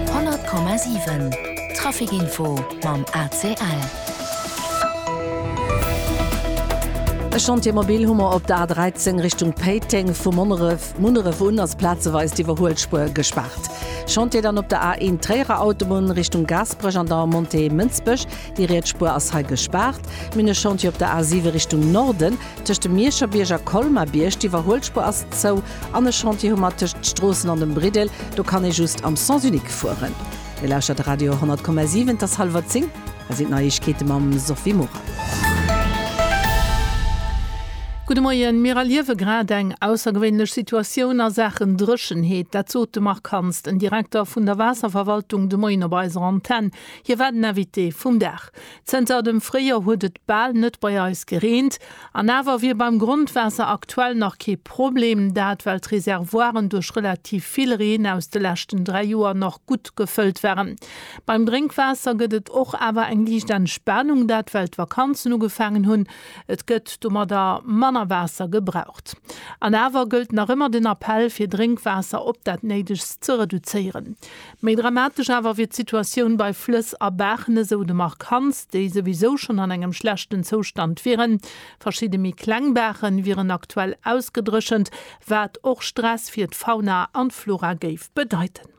100,7 Trafic Info mam ACL. E Chantier mobil hu mer op der A13 Richtung Péiteng, vu Monneref, Munneref un ass plazeweis d'Iwwerhuelspuer gespaart. Chantier dann op der A1 Tréierer Autobunn Richtung Gaasperech an der Montée Mënsbech, déi riets Spuer ass hei gespaart. Mir hunn e Chantier op der A7 Richtung Norden, tëscht dem Mierscherbierg a Colmar-Bierg, d'Iwwerhuelspuer ass zou. An e Chantier hu mer tëscht Stroossen an dem Briddel, do kann ee just am Sens unique fueren. Dir lauschtert Radio 100,7, et ass hallwer 10, hei sinn d'Neiegkeete mam Sophie Morang. Gudde Moien, Mir erliewe grad eng aussergewéinlech Situatioun a Saachen Dréchenheet. Dat sot de Marc Hansen, den Direkter vun der Waasserverwaltung de Moien op eiser Antenn. Hie war den Invité vum Dag. Zënter dem Fréijoer huet et bal net bei eis gereent. An awer wier beim Grondwaasser aktuell nach kee Problem, dat well d'Reservoiren duerch relativ vill Reen aus de leschten dräi Joer nach gutt gefëllt waren. Beim Drénkwaasser gëtt et och awer eng liicht Entspanung, dat well d'Vakanzen ugefaangen hunn. Et gëtt domadder manner Waasser gebraucht. An awer gëllt nach ëmmer den Appell, fir Drénkwaasser op dat Néidegst ze reduzéieren. Méi dramatesch awer wier d'Situatioun bei Flëss a Baachen, esou de Marc Hansen, déi souwisou schonn an engem schlechten Zoustand wieren. Verschidde méi kleng Baache wieren aktuell ausgedréchent, wat och Stress fir d'Fauna an d'Flora géif bedeiten.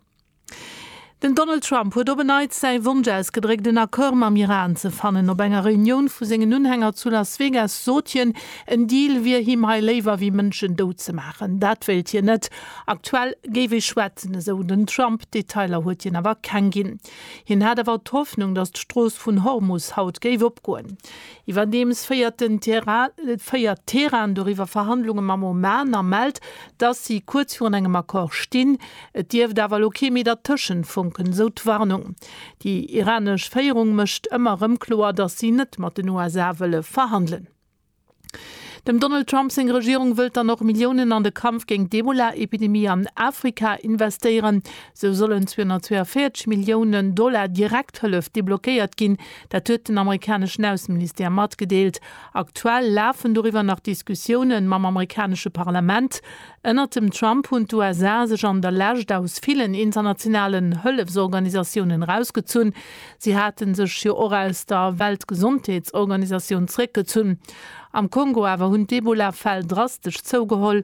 Den Donald Trump huet op en Neits säi Wonsch ausgedréckt, en Accord mam Iran ze fannen. Op enger Reunioun vu sengen Unhänger zu Las Vegas sot hien, en Deal wier him hei léiwer wéi Mënschen dout ze maachen. Dat wéilt hien net. Aktuell géif ee schwätzen, esou den Trump. Detailer huet hien awer keng ginn. Hien hat awer d'Hoffnung, datt d'Strooss vun Hormus haut géif opgoen. Iwwerdeems féiert den féiert Teheran doriwwer Verhandlunge mam Oman a mellt, datt si kuerz virun engem Accord stinn. Et dierft awer elo kee méi dertëschent funken, esou d'Warnung. Déi iranesch Féierung mécht ëmmer erëm kloer, datt si net mat den USA wëlle verhandelen. Dem Donald Trump seng Regierung wëllt dann och Milliounen an de Kampf géint d'Ebola-Epidemie an Afrika investéieren. Sou sollen 242 Millioune Dollar Direkthëllef deblockéiert ginn. Dat huet den amerikaneschen Ausseministère matgedeelt. Aktuell lafen doriwwer nach Diskussioune mam amerikanesche Parlament. Ënnert dem Trump hunn d'USA sech an der Lescht aus villen internationalen Hëllefsorganisatiounen erausgezunn. Si hate sech jo och aus der Weltgesondheetsorganisatioun zeréckgezunn. Am Kongo awer hunn d'Ebola-Fäll drastesch zougeholl.